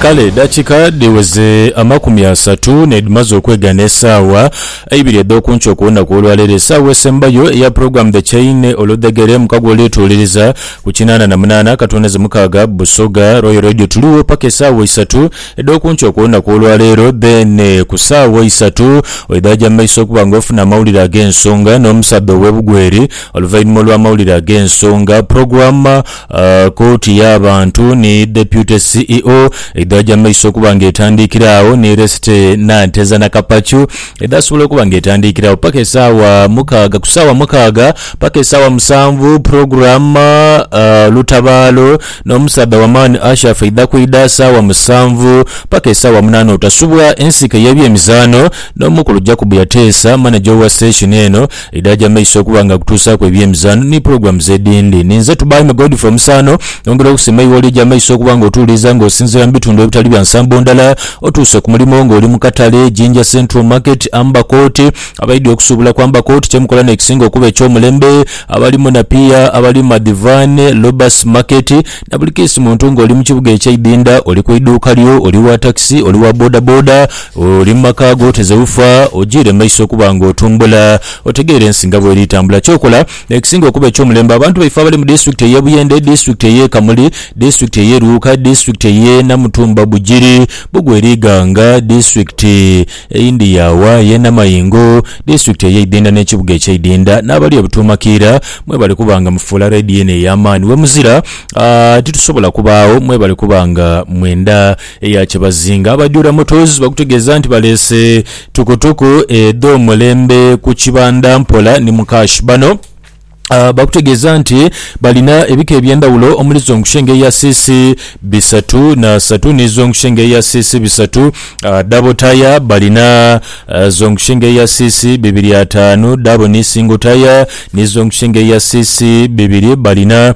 Kale edakika dhiweze amakumi asatu nedhimaze okwegana esaawa eibiri edhoku nkyo ku lunaku olwaleero esaawa esembayo eya program The Chain oludhegere mukago olwetuuliriza ku kinaana na munaana katoneze mukaaga Busoga Royal Radio tuliwo paka esaawa isatu edhoku nkyo ku lunaku olwaleero then ku saawa isatu oidha ja mumaiso okuba nga ofuna amawulire agensonga nomusadha owe Bugweri oluvainhuma olwa mawulire agensonga program Kooti y'abantu ni Deputy CEO edhaja mu maiso okuba nga etandiikira agho ni Resty Nanteza Nakapachu edhaasobola okuba nga etandiikira agho paka esaawa mukaaga. Ku saawa mukaaga paka esaawa musanvu Program Lutabaalo n'omusaadha w'amaani Ashafa eidha kwidha saawa musanvu paka esaawa munaana otasubwa. Ensiike y'ebyemizaano n'omukulu Jacob Yateesa, Manager owa station eno, Edhaja maiso okuba nga akutuusaaku eby'emizaano ni pulogulaamu z'edindi. Ni nze Tubaime Godfrey Omusaano. Nyongera okusiima eigho ly'oja amaiso okuba nga otuwuliriza nga osinziira mu bitundu ebitali bya nsambo ndala. Otuuse ku mulimo nga oli mu katale, Jinja Central Market, Amber Court. Abaidhi okusuubula ku Amber Court kye mukola n'ekisinga okuba eky'omulembe. Abali mu Napier, abali mu Madhivane, Lobus Market, na buli kesi muntu nga oli mu kibuga eky'eidinda, oli ku iduuka lyo, oli wa takisi, oli wa bodaboda, Oli mu maka ago oteze ufa, ojiire mu maiso okuba nga otumbula, otegeere ensi nga bw'eri tambula. Ky'okola, Ekisinga okuba eky'omulembe, abantu baife abali mu disitulikiti ey'e Buyende, disitulikiti ey'e Kamuli, disitulikiti ey'e Luuka, disitulikiti ey'e Namutumba Bugiri, Bugweri Iganga, disitulikiti eyindi yawa ey'e Namayingo, disitulikiti ey'e Idinda n'ekibuga eky'e Idinda n'abali e Butuuma Kiira, mwebale kuba nga mufuula leediyo eno ey'amaani. Wemuzira, titusobola kubaagho, mwebale kuba nga mwenda Eya Kyebazinga, Abajura Motors bakutegeeza nti baleese tukutuku edh'omulembe ku kibanda mpola ni mu kashi. Bano bakutegeeza nti balina ebika eby'endhawulo omuli zongushenge eya cc bisatu n'asatu ni zongushenge eya cc bisatu. Dhabo taya balina zongushenge eya cc bibiri ataanu, dhaabo ni singo taya ni zongushenge eya cc bibiri balina.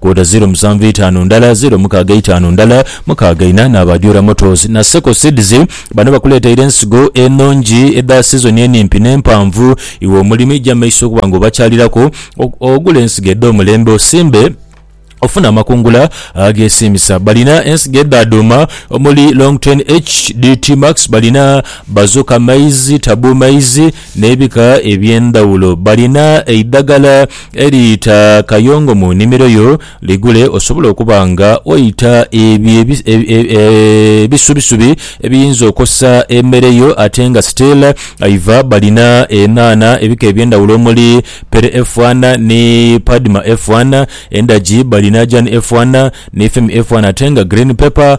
Kwota ziro musanvu eitaanu ndala, ziro mukaaga eitaanu ndala, mukaaga ina n'aba Jura Motors na Seco Seeds. Bano bakuleteire ensigo enungi edha sizoni enimpi n'empanvu. Iwe omulimi ja mumaiso okuba nga obakyaliraku ogule ensigo edh'omulembe osimbe ofune amakungula ageesiimisa. Balina ensigo edha dhuuma omuli Longtrain HD, T-Max, balina Bazooka Maize, Taboo Maize, N'ebika eby'endhawulo. Balina eidhagala eriita kayongo mu nnimiro yo, ligule osobole okuba nga oita ebyo ebisubisubi ebiyinza okosa emere yo ate nga still aiva. Balina enhanha ebika eby'endhawulo omuli, Pere F1 ni Padma F1, endhagi balina Jan F1 ni Femi F1 ate nga green pepper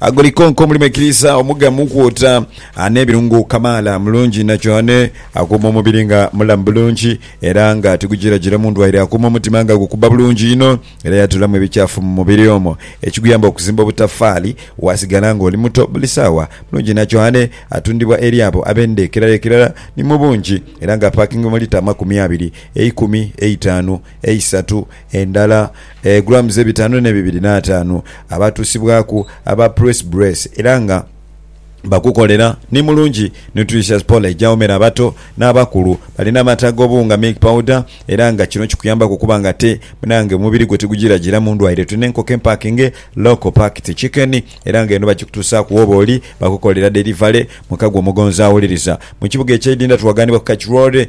Agolikonko mulimu ekiriisa omugamu kwota n'ebirungo kamaala. Mulungi inha kyohane, akuuma omubiri nga mulamu bulungi era nga tigujirajira mu ndwaire. Akuuma omutima nga gukubba bulungi inho era yatolamu ebikyafu mu mubiri omwo ekiguyamba okuzimba obutafaali waasigala ng'oli muto buli saawa. Mulungi inha kyohane atundibwa eri abo ab'enda ekirala ekirala ni mu bungi era nga apaakingibwa mu lita amakumi abiri, eikumi, eitaanu, eisatu, endala grams ebitaanu ne bibiri n'ataanu abaatuusibwaku aba Press Brace era nga bakukolera ni Mulungi Nutritious Poly egyawomera abato n'abakulu. Balina amata ag'obuwunga, milk powder, era nga kino kikuyambaku okuba nga ate munange omubiri gwo tigugiragiramu ndwaire. Tulina enkoko empakinge, local packed chicken, era nga eno bagikutuusaaku wooba oli. Bakukolera delivery mu ka gwo omugonzi awuliriza. Mu kibuga ekya Idinda tuwagaanibwa ku Kach Road.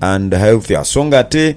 and healthier so nga ate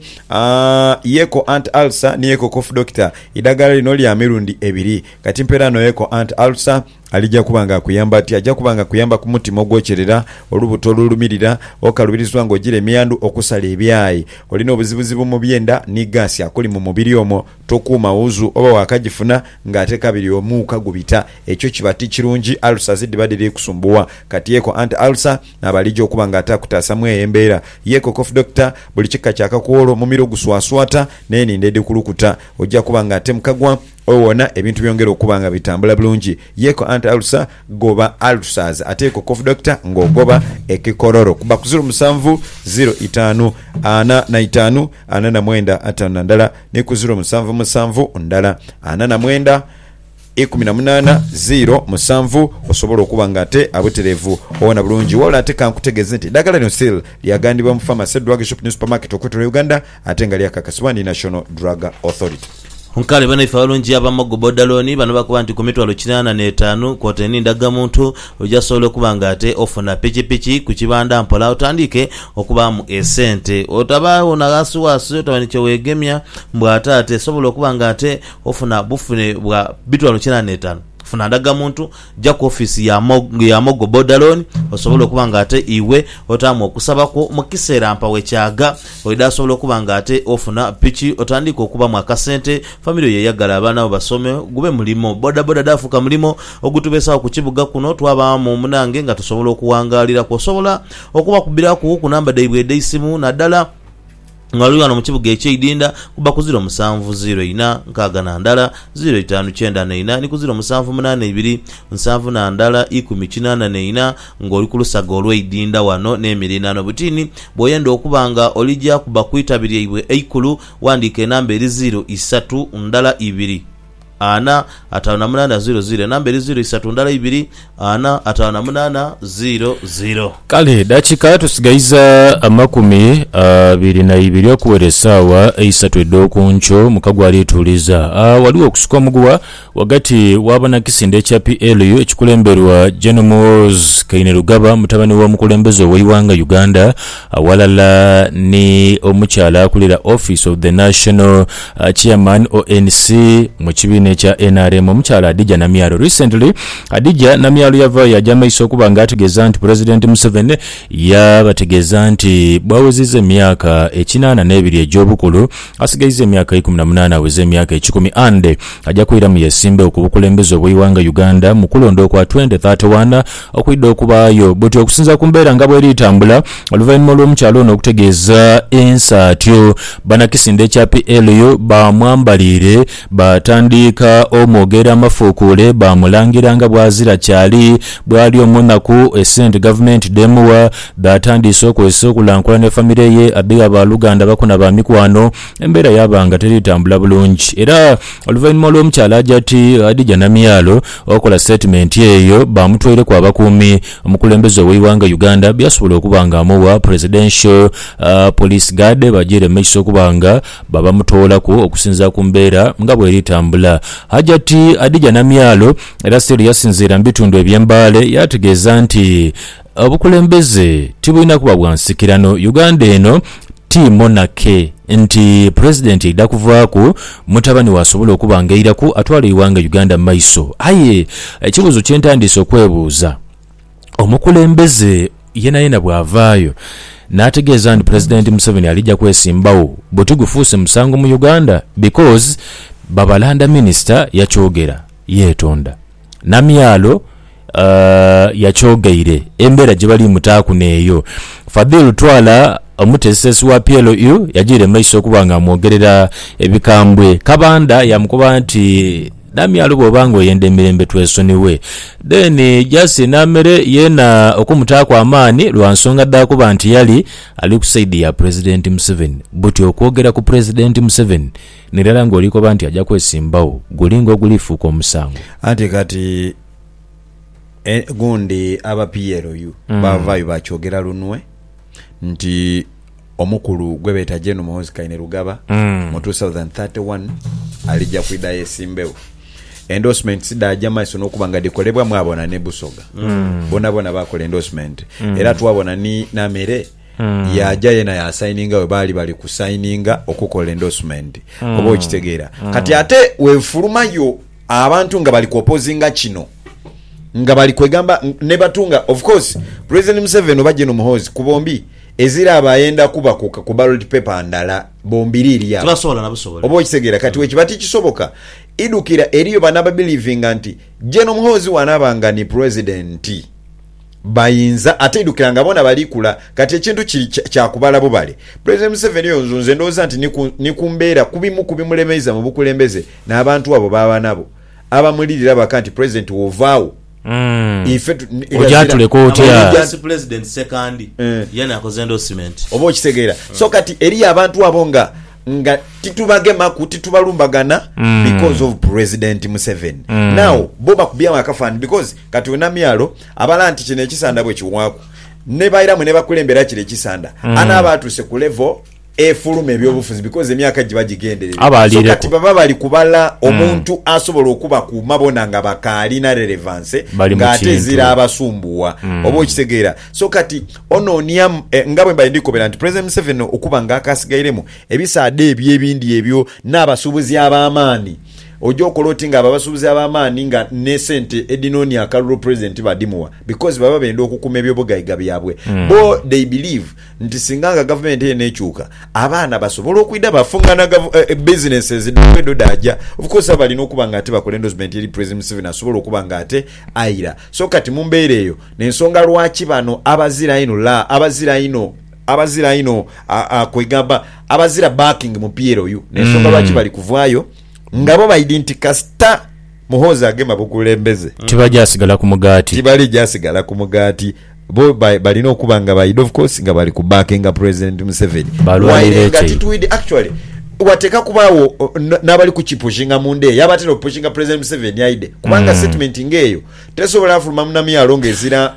yeko anti ulcer ni yeko cough doctor idagala lino lya mirundi ebiri kati mpera no yeko anti ulcer alija kuba nga akuyamba ati aja kuba nga akuyamba ku mutima ogwokyerera olubuto olulumirira okalubirizibwa nga ogira emiyandhu okusala ebyayi olina obuzibuzibu mu byenda ni gaasi akuli mu mubiri omwo tokuuma wuzu oba wakajifuna nga ate kabiri omuuka gubita ekyo kiba tikirungi ulcers dhiba dhiri kusumbuwa kati yeko anti ulcer Naaba alija okuba nga ataakutaasa mu eyo embeera ye Cocof Doctor, buli kika kya kakoolo, mumiro oguswaswata, n'enindho edhikulukuta, oja kuba nga ate mukagwa owona ebintu byongera okuba nga bitambula bulungi ye ko Anti Ulcer goba Ulcers ate ye Cocof Doctor ng'ogoba ekikororo. Kuba ku ziro musanvu ziro itaanu ana na itaanu ana na mwenda ataanu na ndala ni ku ziro musanvu musanvu ndala ana na mwenda. ikumi na munaana ziiro musanvu osobola okuba nga ate abutereevu owona bulungi. Wabula ate kankutegeeze nti eddagala lino seal lyaghandiibwa mu Pharmacy, Drug Shop ni Supermarket okwetolola Uganda ate nga lyakakasibwa ni National Drug Authority. Nkale banaife abalungi aba Mogo Boda Loan bano bakoba nti ku mitwalo kinaana n'etaanu kwotaire ni ndagamuntu oja sobola okuba nga ate ofuna pikipiki ku kibanda mpola otandiike okubaamu esente otabaagho na ghasighasi otaba ni kye weegemya mbu ate ate sobola okuba nga ate Ofuna bufune bwa bitwalo kina n'etaanu, funa ndagamuntu, ja ku ofiisi ya ya Mogo Boda Loan osobole okuba nga ate iwe otaamu okusaba kwo mu kiseera mpa wekyaaga. Oidha sobola okuba nga ate ofuna piki otandiike okubamu akasente, famire yo eyagale abaana bo basome gube mulimo. Bodaboda dhaafuuka mulimo ogutubeesawo ku kibuga kuno twabaamu munange nga tusobola okuwangaaliraku. Osobola okubakubiraku ku namba dhaibwe edheisimu nadala. Nga oli ghano mu kibuga ekyeidinda, kuba ku ziro musanvu, ziro ina, nkaaga na ndala, ziro itaanu kyenda na ina, ni ku ziro musanvu munaana ibiri, nsanvu na ndala ikumi kinaana na ina, nga oli ku lusaga olweidinda ghano n'emiriraano. Butini, bw'oyenda okuba nga oli gya kuba ku itabi lyaibwe eikulu, wandiika enamba eri ziro isatu ndala ibiri. ana, ataanu na munaana, ziiro, ziiro, enamba eri ziiro isatu ndala ibiri, ana, ataanu na munaana, ziiro, ziiro. Kale edakika tusigaiza amakumi abiri na ibiri okuwera esaawa eisatu edh'oku nkyo. Mukago alituuliza. A, Ghaligho okusika omuguwa ghagati w'abanakisinde ekya PLU ekikulemberwa Gen Muhoozi Kainerugaba mutabani w'omukulembeze ow'eighanga Uganda, Aghalala ni omukyala akulira office of the National Chairman ONC mu kibiina ekya nrm omukyala Hadijah Namyalo. Recently Hadijah Namyalo yavaayo yaja maiso okuba nga ategeeza nti President Museveni yabategeeza nti bwawezizza emyaka ekinaana n'ebiri egy'obukulu asigaiza emyaka ikumi na munaana aweze emyaka ekikumi and aja kwiramu yesimbewo ku bukulembeze obweiwanga Uganda mu kulonda okwa twenty thirty one Okwidha okubaayo buti okusinziira ku mbeera nga bweri etambula oluvainhuma olw'omukyala ono okutegeeza ensa atyo, banakisinde kya PLU baamwambaliire baatandiika omwogeera amafuukuule baamulangira nga bwazira kyali bwali omunaku, esente gavumenti dh'emugha dhaatandiise okozesa okulankulana efamire ye adhigha baaluganda bako na baamikwano embeera yaaba nga teri tambula bulungi era oluvainhuma olw'omukyala aja ati adhija na myalo. Okola sitatimenti eyo baamutwaireku abakuumi omukulembeze ow'eighanga Uganda byasobola okuba nga amugha Presidential Police Guard bajiire mu maiso okuba nga babamutoolaku okusinziira ku mbeera nga bweri tambula. Hajati Hadijah Namyalo era still yasinziira mu bitundu ebye Mbale yaategeeza nti Obukulembeze tibulina kuba bwa nsikirano. Uganda eno ti monarchy nti president eidha kuvaaku mutabani we asobole okuba nga eiraku atwala eighanga Uganda mu maiso. Aye ekibuuzo kye ntandiise okwebuuza, omukulembeze yenayena bw'avaayo n'ategeeza nti president Museveni alija kwesimbagho, buti gufuuse musango mu Uganda? Because Babalanda minister yakyogera yeetonda. Namyalo yakyogeire embeera gye bali mutaaku n'eyo Fadhil Twala omuteesiteesi wa PLU yagiire mu maiso okuba ng'amwogerera ebikambwe. Kabanda yaamukoba nti, Namyalo bw'oba ng'oyenda emirembe twesonighe. Then Jasi Namere yeena okumutaaku amaani lwa nsonga dha kuba nti yali ali ku sayidi ya Pulezidenti Museveni. Buti okwogera ku Pulezidenti Museveni. N'irala ng'olikoba nti aja kwesimbagho, guli ng'ogulifuuka omusango. Anti kati e, gundi aba PLU baavaayo baakyogera lunwe nti omukulu gwe beeta Gen Muhoozi Kainerugaba mu two thousand and thirty one alija kwidha yeesimbegho. Endorsements dhaaja maiso n'okuba nga dhikolebwa mwabona ni Busoga. Boonaboona baakola endorsementi. Era twabona ni n'amere. yaaja yeena yaasayininga we baali bali kusayininga okukola endoosumeenti. Oba okitegeera? Kati ate weefulumayo abantu nga bali kwopozinga kino, nga bali kwegamba ne batu nga, of course, President Museveni oba Gen. Muhoozi ku bombi eziraaba ayenda kuba ku, ku ballot paper ndala bombiriiri agho. Tibasobola na busobola. Oba okitegeera? Kati bwekiba tikisoboka, idhukira eriyo bano ababilivinga nti Gen. Muhoozi bw'anaaba nga ni President, Bayinza ate idhukira nga bona bali kula kati ekintu kiri kya kubala bubale. Pulezidenti Museveni yonzu nze ndowooza nti ni ku mbeera ku bimu ku bimulemeiza mu bukulembeze n'abantu abo b'aba nabo abamulirira baka nti Pulezidenti w'ovaagho ife ogyatuleka otya? Ate Pulezidenti Ssekandi yena akoze endorsement. Oba okitegeera so kati eriyo abantu abo nga nga titubagemaku titubalumbagana because of Pulezidenti Museveni. Now bo bakubyemu akafaananyi because kati we Namyalo Abala nti kino ekisanda bwe kiwaaku ne baira mwe ne bakulembera kire ekisanda, mm. anaaba atuuse ku level efuluma ebyobufuzi because emyaka giba gigenderere so kati baba bali kubala mm. omuntu mm. asobola okubakuuma bona nga bakaalina relevance ng'ate ezira abasumbuwa mm. oba okitegeera so kati onoonia eh, nga bwe mbali ndikobera nti president museveni okuba nga akasigairemu ebisaada ebyo ebindi ebyo n'abasuubuzi ab'amaani Oja okola oti nga abo abasubuzi abamaani nga ne sente edhinonia akalulu president tibadhimuwa because baba benda okukuma ebyobugaiga byabwe bo they believe nti singa nga gavumenti eno ekyuka abaana basobola okwidha bafungana businesses dhaibwe dho dhaja of course baba balina okuba nga ate bakola endorsement eri president museveni asobola okuba nga ate aira so kati mumbeera eyo nensonga lwaki bano abazira ino la abazira ino abazira ino kwegamba abazira backing mupiira oyu nensonga lwaki bali kuvaayo nga bo baidhi nti kasita Muhoozi agema bukulembeze, Tibaja sigala ku mugaati. tibalija sigala ku mugaati. Bo ba- balina okuba nga baidhi of course nga bali ku backinga President Museveni. Balwanira Waire nga ekyeyo. titwidhi actually wateeka kubaagho o, n- n'abali kukipushinga munda eyo abatera opushinga President Museveni aidhe kubanga Mm. statement nga eyo tesobola fuluma mu namyalo nga ezira